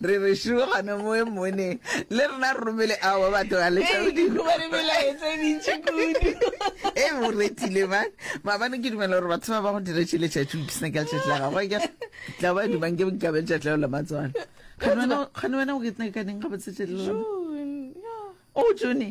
re re šuo gane moe mone le rena re romele ao batho ga e o retile ba maabane ke dumela gore batho ba ba go dira tšhe letšatši o kisna ke a letšatši la gago ke tla ba dumang ke nkabe letšatši la o la matswana gane wena o ke tsna ka neng ga botsetšelelo o jone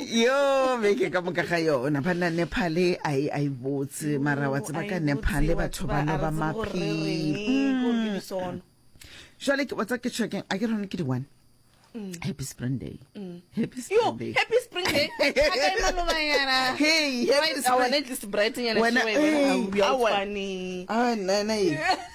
yo beke ka moka ga yona banna nepale a e a e botse mara wa tseba ka nepale batho ba no ba maphele jale ke botsa ke checking a ke rone ke di-one mm. happy spring day mm. happy spring day happy spring day hey happy spring day wena hey awena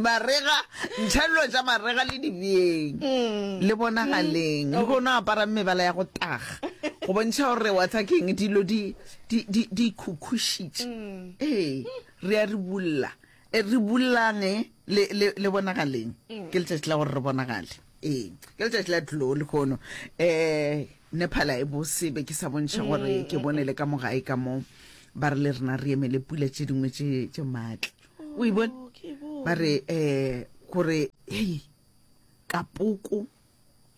marega ntšhelelo tša marega le dibjeng mm. le bonagaleng mm. le go no aparang mebala ya go taga go bontšha gore wa tsa keng dilo di khukhušitše mm. ee re a re bulla e re bullang e, le bonagaleng ke letšatši la gore re bonagale ee ke letšatši la tloo le kgono um ne phala e bosebe ke sa bontšha gore ke bone le ka mogae ka moo ba re le rena re emele pula tše dingwe tše maatla o e bone ba re um gore hei ka poko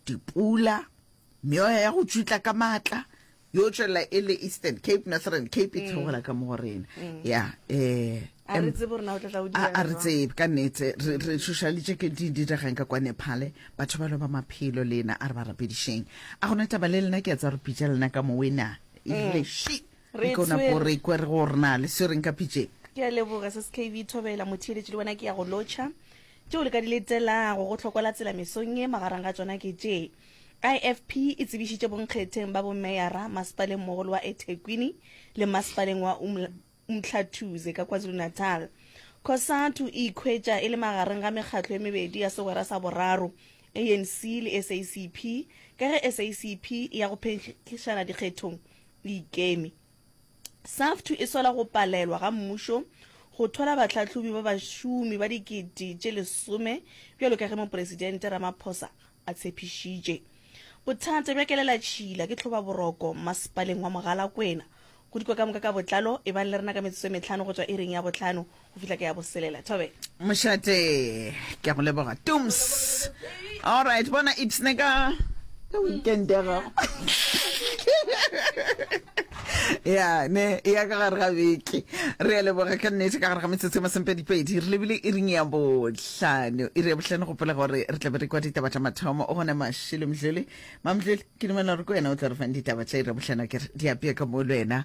dipula meoya ya go tšwitla ka maatla yo tswelela e le eastern cape northern cape e theogela ka mo go rena ya um a re tsebe gore na o tla tla o dira a re tsebe ka nete re re šošalitše ke di diregang ka kwane phale batho ba lo ba maphelo le ena a re ba rapedišeng a gona taba le lena ke a tsa re pitša lena ka mowena ebile mm. shi Re Re ka nako tshwere. re kwer go re na le swereng ka pitšeng. Ke a leboga se skv thobela motheeletši le wena ke ya go lotšha tšeo le ka di letelago go hloko la tsela mesong ye magareng ga tšona ke tše ifp e tsebišitše bonkgetheng ba bomeyara masepaleng mogolo wa ethekwini le masepaleng wa Umla- umhlathuze ka kwazulu-natal cosatu e ikhwetša e le magareng ga mekgatlo e mebedi ya segwera sa boraro anc le sacp ka ge sacp e ya go phenkgišana dikgethong le ikemi. SAFTU e sola go palelwa ga mmušo go thola bahlahlobi ba bašomi ba dikete tše lesome bjalo ka ge Mopresidente Ramaphosa a tshepišitše. Bothata bja kelelatšhila ke tlhobaboroko masepaleng wa Mogalakwena. Go dikwa ka moka ka botlalo ebang le rena ka metsotso e mehlano go tšwa iring ya bohlano go fihla ke ya boselela thobe mošate ke go leboga tums alright bona ipsne ka ka weekend ya gago ya ne e ya ka gare ga beke re ya leboga ka nnete ka gare ga metsotso e masempedipedi re lebile e ring ya botlhano e re ya botlhano gopela gore re tlabe re kwa ditaba tša mathomo o gone mašilo mdlele mamdlele ke dumela gore ko wena o tla re fang ditaba tša ira e botlhano kere di apea ka mo le wena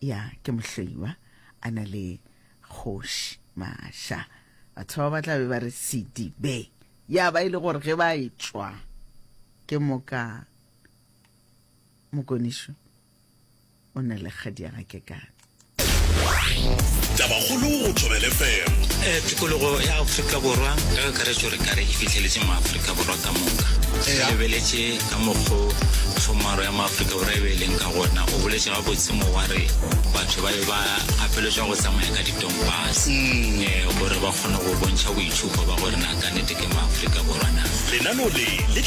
Ya, ke mohloiwa, a na le kgoši. Maša, batho ba ba tla be ba re sedibe. Ya ba e le gore ge ba etšwa ke moka mokonišo o na le kgadiaga ke ka tabakgolo go tšobele fm eh, tikologo ya aforika borwa ka kakaretšo re kare e fitlheletse mo aforika borwa ka moka re lebeletse Ka mokgo Tshomaro ya Maafrika Borwa e be e leng ka gona, o boletše gabotse mo wa re batho ba be ba gapeletšwa go tsamaya ka ditompase eh, gore ba kgone go bontšha boitšhupo ba gore na ka nnete ke Maafrika Borwa na. Lenaneo le le tla